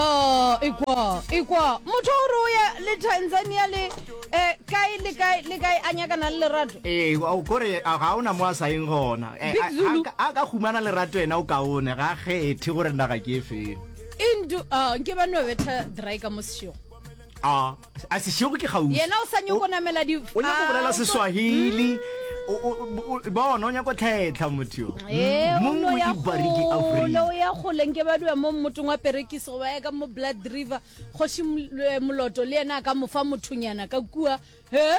Oh, ikwa, ikwa. Motho o re o ya le Tanzania le eh kae le kae le kae a nyakana le lerato. Eh, o kore a ga ona mo a sa eng gona. Eh, Big a- Zulu. a ka- a ka humana lerato ena o kaone ga kgethe gore naga ke e feng. Into ah nke ba no betha dry ka mo sešong. A A sešego ke kgauswi. Yena o sa nyoko namela di. O nyako bolela seswahili. Ba ona o nyako tlhetla motho yo. Eh, mo mo ya bariki Afrika. Lo ya goleng ke ba dua mo motong wa perekisi go ba ya ka mo Blood River. Go shi moloto le yena ka mofa mothonyana ka kua. He?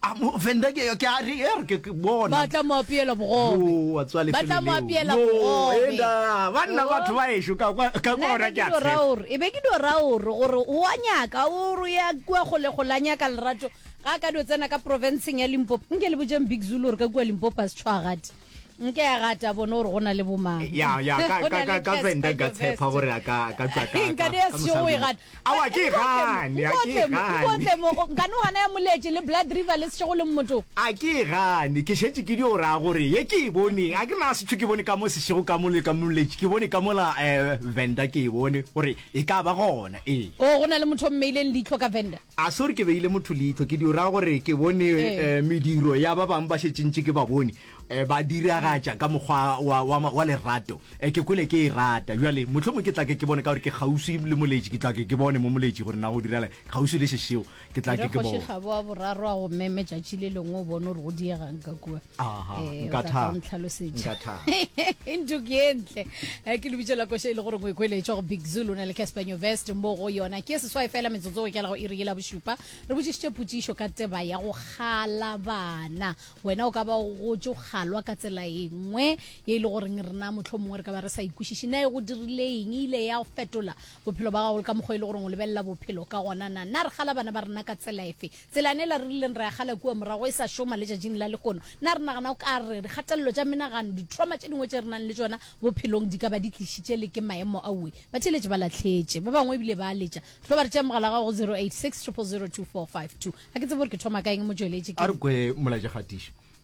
A mo offenda ke yo ke a re er ke ke bona. Ba tla mo apeela bogobe. Yo wa tswa lefelo leo. Ba tla mo apeela bogobe. Yo enda ba nna batho ba ešo ka kwa ka kwa ra ke a tshe. E be ke do ra o re gore o a nyaka o re ya kwa go le go la nyaka lerato ga ka do tsena ka province ya Limpopo. Nke le bojeng Big Zulu re ka kwa Limpopo a se tshwagadi. nke a gata bone gore go na le bomang ya ya ka Go na ka le ka ka Casper venda ka tshepa Nyovest. gore a ka ka tswa ka nka di a ka sego e gata awa ke gane a ke gane nkane gana ya moletše le blood river le sešego le mmoto a ke e gane ke šetše ke dio raya gore ye ke e bone a ke na setho ke bone ka mo sešego ka mole ka moletše ke bone ka mola um venda ke e bone gore e ka ba gona ee o go na le motho o mmeileng leitlho ka venda A sorry ke beile motho leihlo ke di ra gore ke bone Ee. eh, mediro ya ba bangwe ba šetšentše ke ba bone eh, ba diragatša ka mokgwa wa, wa, ma- wa lerato eh, ke kwele ke e rata bjale motlho mongwe ke tla ke ke bone ka gore ke kgauswi le moletši ke tla ke ke bone mo moletši gore na go direla kgauswi le šešeo ke tla ke ke bone Regošegabo wa boraro a go meme tšatši le lengwe o bone gore go diegang ka kua Aha, Eh, o nka tla tla thaba. o ntlhalosetša. Nka thaba. ntho ke e ntle Eh, ke lebitso la koša e le gore o ekweletšwa go big zulu o na le casper newvest mo go yona ke seswai fela metsotso e kela go iri yela bošupa re botšišitše potšišo ka teba ya go kgala bana wena o ka ba o gotse o kgalwa ka tsela e nngwe e le goreng rena motlho mongwe re ka ba re sa ikwešiše na e go dirile eng e ile ya go fetola bophelo ba gago le ka mokgwa e le goreng o lebelela bophelo ka gona na na re kgala bana ba rena ka tsela efe Tselane ela re rileng ra e gala kua morago e sa šoma letšatšing la lehono, na re nagana o ka re dikgatelelo tša menagano, ditroma tše dingwe tše re nang le tšona bophelong di ka ba di tlišitše le ke maemo? Aowe. Batheeletši ba lahletše. Ba bangwe e bile ba letša. Tlo ba re tšee mogala wa gago go 086 000 2452. Ga ke tsebe gore ke thoma kaeng, motšweletši, A ke. re kwe molaetšakgatišo.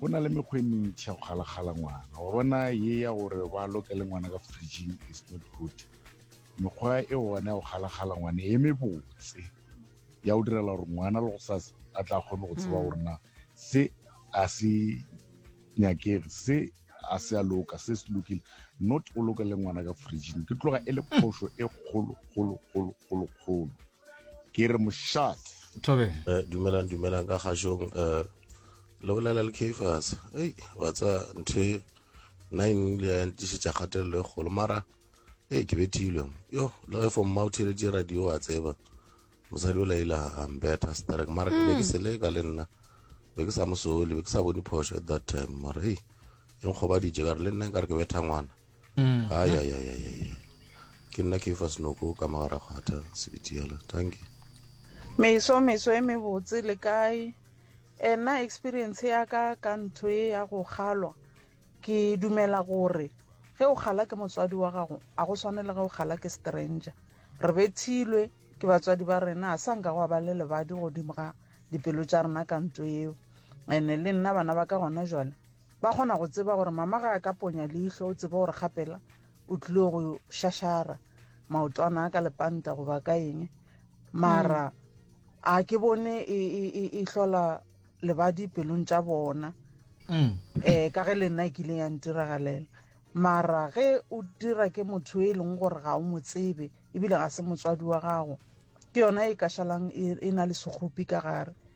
Go na le mekgwa e mentši ya go galagala ngwana. Wa bona ye ya gore ba lokele ngwana ka fridging is not good. Mekgwa e gona ya go galagala ngwana e mebotse ya go direla gore ngwana le go sa a tla kgone go tseba mm. gore na se a se nyakege se a se a loka se se lokile not o lokele ngwana ka fridging ke tloga e le mm. phoso e kgolo kgolo kgolo kgolo kgolo ke re mošate tobe eh, dumelang dumelang ka kgašong um eh, le bolela le cafas ei wa tsa ntho e nna eng le ya ntišetša kgatelelo e kgolo mara ee ke bethilwe yo le ge fomma o theletše radio wa tseba mosadi o laila ambeta starek mara ke be ke mm. seleka le nna be ke sa mosole be ke sa bone phoso at that time mara ei e nkgobaditše kare le nna e kare ke betha ngwana mm. ayayayaya ke nna ke fa senoko ka magara kgwatha sebiti yala thank you meso meso e mebotse le kae ena experience ya ka ka ntho e ya go kgalwa ke dumela gore ge o kgala ke motswadi wa gago a go tshwane le ge o kgala ke stranger re bethilwe ke batswadi ba rena a sa nka go ba le lebadi godimo ga dipelo tša rena ka ntho eo ene le nna bana ba ka gona jale Ba kgona go tseba gore mama ga a ka ponya leihlo, o tsebe gore gapela o tlile go šašara maotwana a ka lepanta goba ka eng. Mara mm. a ke bone e, e, e, e hlola lebadi pelong tša bona um ka ge le nna e kile ya ntiragalela mara ge o dira ke motho e leng gore ga o mo tsebe ebile ga se motswadi wa gago ke yona e kašalang e, e na le segopi ka gare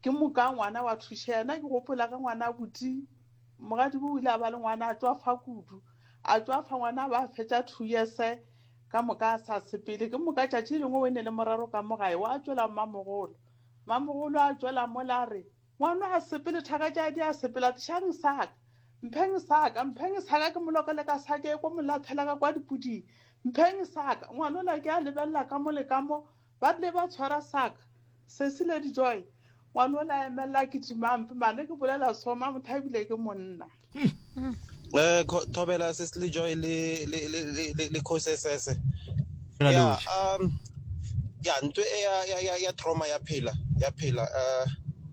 Ke moka ngwana wa thuša yena. Ke gopola ge ngwana a buti mogadibo o ile a ba le ngwana a tšwa fa kudu a tšwa fa ngwana ba fetša two years ka moka a sa sepele ke moka tšatši lengwe o e ne le morero ka mo gae wa tšwela mmamogolo mmamogolo a tšwela mo la re ngwana a sepele thaka tša di a sepela tšhang saka mpheng saka mpheng saka ke molokele ka sake ko molathela ka kwa dipuding mpheng saka ngwana o la ke a lebelela ka mo le ka mo Ba tle ba tshwara saka. Sesi, Lady Joy, ngwana o le a emelela a kitimampe, mane ke bolela so, Mamothabile ke monna. Eh, Thobela, Sesi le Joy le, le, le, le, le, le khose sese. Ya, um, ya, ntwe e ya, ya, ya, ya trauma ya phela, ya phela, uh,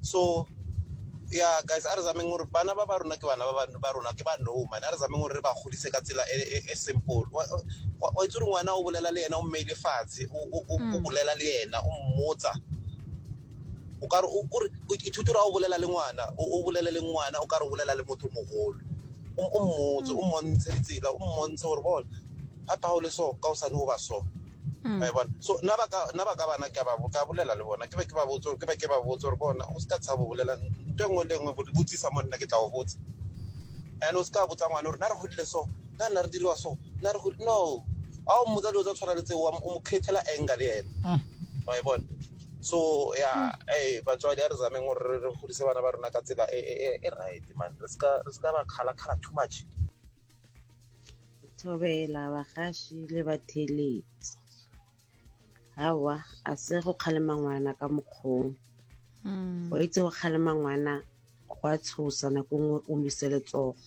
so ya guys a re zameng gore bana ba ba rona ke bana ba rona ke ba no mane a re zameng gore re ba godise ka tsela e, e, e simple wa itse gore ngwana o bolela le yena o mmeile fatshe o hmm. bolela le yena o mmotsa o ka re ithuto ra o bolela le ngwana o bolele le ngwana o ka re o bolela le motho mogolo o mmotse o mmontshe ditsela o mmontshe gore bone ga phago le so ka o sane o ba so Mm. a bona so nna ba ka nna ba ka bana ke a ba bo- ka bolela le bona ke be ke ba botse gore- ke be ke ba botse gore bona o se ka tshabo bolela nto e nngwe le e nngwe bo- botsisa mo nna ke tla o botsa and o se ka botsa ngwane gore na re godile so na nna re diriwa so na re godile no a o mmotsa dilo tsa tshwana le tseo wa mo- o mo createla anger le ene Mm. wa e bona so ya eh batswadi a re zameng gore re- re godise bana ba rona ka tsela e- e e- e right man re se ka re se ka ba kgalakgala too much thobela bagaši le batheeletsi gawa a se go kgalema ngwana ka mokgong hmm. go itse go kgalema ngwana go a tshosa nako nngwe o mise letsogo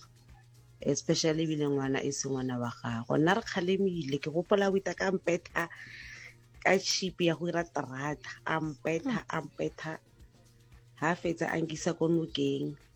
especially ebile ngwana e se ngwana wa gago nna re kgalemile ke gopola o ita ka mpetha ka chipi ya go ira terata a mpetha a mpetha ga fetsa a nkisa ko nokeng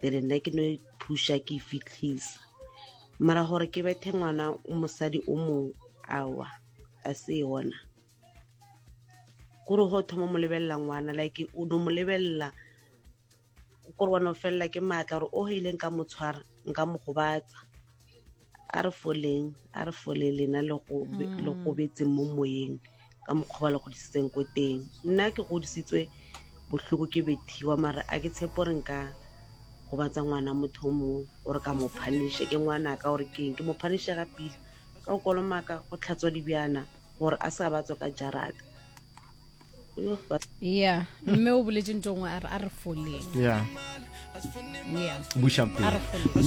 pele nna ke no e thuša ke e fitlhisa mara gore ke bethe ngwana mosadi o mong awa a se yona kore go thoma mo lebelela ngwana like o no mo lebelela kore wa no felela ke maatla gore o heileng ka mo tshwara nka mo gobatsa a re foleng a re fole lena le go be- Mm. le go betseng mo moyeng ka mokgwa ba le godisitseng ko teng nna ke godisitswe bohloko ke bethiwa mara a ke tshepo gore nka gobatsa ngwana motho o mongwe gore ka mo phaniše ke ngwanaka gore ke eng ke mo phaniše ga pila ka go kolomaka go tlhatswa dibjana gore a sa batswa ka jarata Yo, ba- ya mme o boletse ntho ngwe a re a re foleng ya ya buša a re foleng